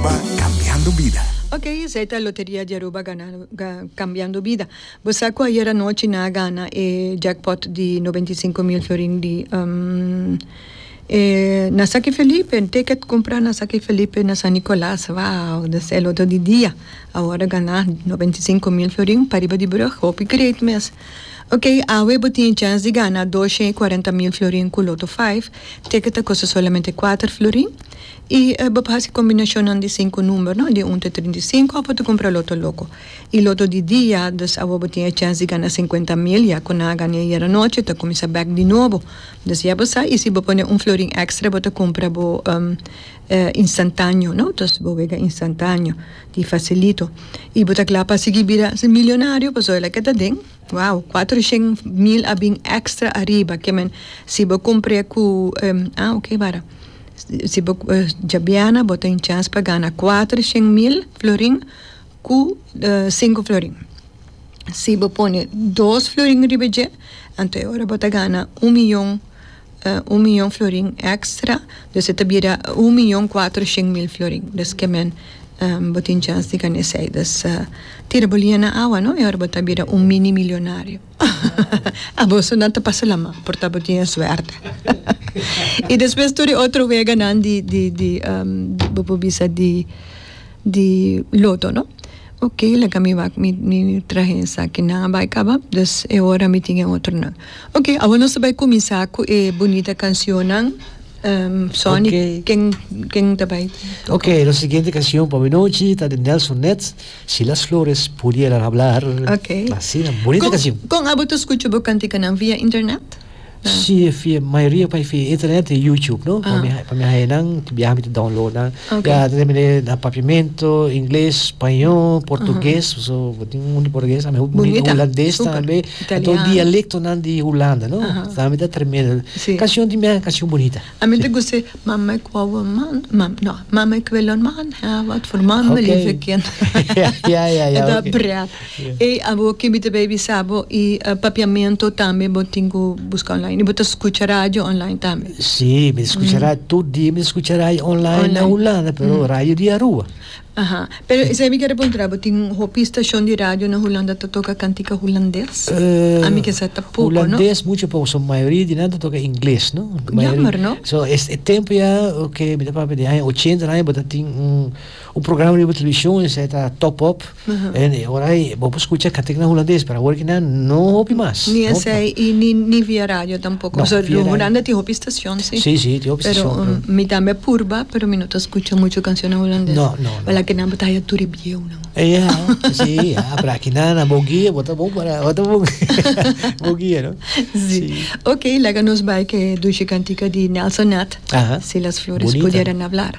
Aruba, Cambiando Vida. Ok, esei ta Loteria di Aruba ganando, ga, Cambiando Vida. Bo sa cu ayer anochi nan a gana e jackpot di noventa i sinku mil fiorin di, um, e, na Saki Felipe, un ticket cumpra na Saki Felipe na San Nicolas, wow, do ser loto di dia, awor a gana noventa i sinku mil fiorin pariba di brug, hopi great mes. Ok, awe bo tin e chance di gana doshen i kuarenta mil fiorin cu Lotto five, ticket ta custa solamente kuater florin, I e bo por hasi kombinashonnan di sinku number no di un te trinta i sinku a bo ta kumpra loto loko i loto di dia dus awo bo tin e chèns di gana sinkuenta mil ya ku nan a gana ayer anochi ta kuminsá bèk di nobo dus ya bo sa i si bo pone un florin èkstra bo ta kumpra bo instantaneo no dus bo wega instantaneo di fasilito i bo ta kla pa sigui bira milionario pasobra loke ta den. Wow, cuatro shen mil a bin extra ariba ke men si bo compre cu ah ok wara si bo djabiana bo tin chans pa gana cuatro shen mil florin cu cinco florin si bo pone dos florin riba dje anto e ora bo ta gana un miyon. un miyon florin èkstra, dus e ta bira un miyon kuater shen mil florin. Dus ke men bo tin chèns di kane esei. Dus tira bo liña na awa, no? E ora bo ta bira un mini milionario. Aboso nan ta pasa lama, por ta bo tin e suerte. I despues tur e otro weganan di, di, di, bo por bisa di, di loto, no? Oke, laga mi wak mi, mi traha esakinan a bai kaba, dus e ora mi tin e otronan. Ok, awor nos ta bai kuminsá ku e bunita kansionnan. Sony, ken ken ta bai? Ok, nos siguiente kansion pa awinochi ta di Nelson Nets, Si las flores pudieran hablar. Ok. Asina, bunita kansion. Kon kon abo ta skucha bo kantikanan? Via internet? Si, via mayoria bai via internet i YouTube, no? Pa mi pa mi haña nan, biaha mi ta download nan. Ok. Ya ta depende na papiamento, ingles, spañó, portugues, so bo tin un di portugues tambe, un Bonita, hulandes super. tambe, anto Italiano. dialectonan di Hulanda, no? Aha. Tambe ta tremendo. Sí. Cancion di mea, cancion bonita. A mi ta gusta e Mama ik wou een man, mam, no, Mama ik wil een man hebben, wat voor man wil je Okay. voor kind. Ja, ja, ja, E dat oké. breed. Ey abo ke mi ta bay bisa bo y papiamento tambe bo tin cu busca online y bo ta scucha radio online tambe. Si, mi ta scucha radio, tur dia mi ta scucha radio online na Hulanda, pero radio di Aruba. Aha, pero esey mi quier a preguntara bo, tin hopi stacion di radio na Hulanda ta toca cantica Hulandes? A mi kesa ta poco, no? Hulandes mucho poco, so mayoria di nan ta toca Ingles, no? Jammer, no? So es e tempo ya ke mi ta papia di aña ochenta nan bo ta tin un programa riba television esey ta Top Up. Anyway, ora ei bo por scucha Catherick na Hulandes, pero awor aki nan no hopi mas. Ni esei i ni ni via radio tampoco. No, via radio. Huranda tin hopi stacion, si. Si, si, tin hopi stacion, pero. Pero mi tambe a purba, pero mi no ta scucha mucho cancion na Hulandes. No, no, no. Wel aki nan bo ta haya tur e bieunan. Ya, si, ya, pero aki nan a bo guia, bo ta bon para, bo ta bon bo guia, no? Si. Si. Ok, laga nos bai cu e dushi cantica di Nelson Nat. Aha. Si las flores Bunita. pudieran hablar.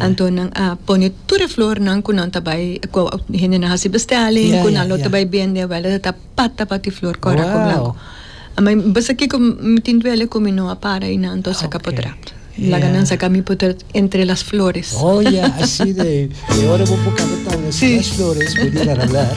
Anto nan a pone tur e flornan ku nan ta bai ku hendenan hasi bestelling ku nan lo ta bai bende wèl e ta pata pa ti flor kòrako blanku. Mi bisa kiko mi tin duele ku mi no a para ei nan anto saka potrat. Laga nan saka mi potrat entre las flores. Oh ya, asina ei. E ora bo por kaba tabla entre las flores bo di nan hablar.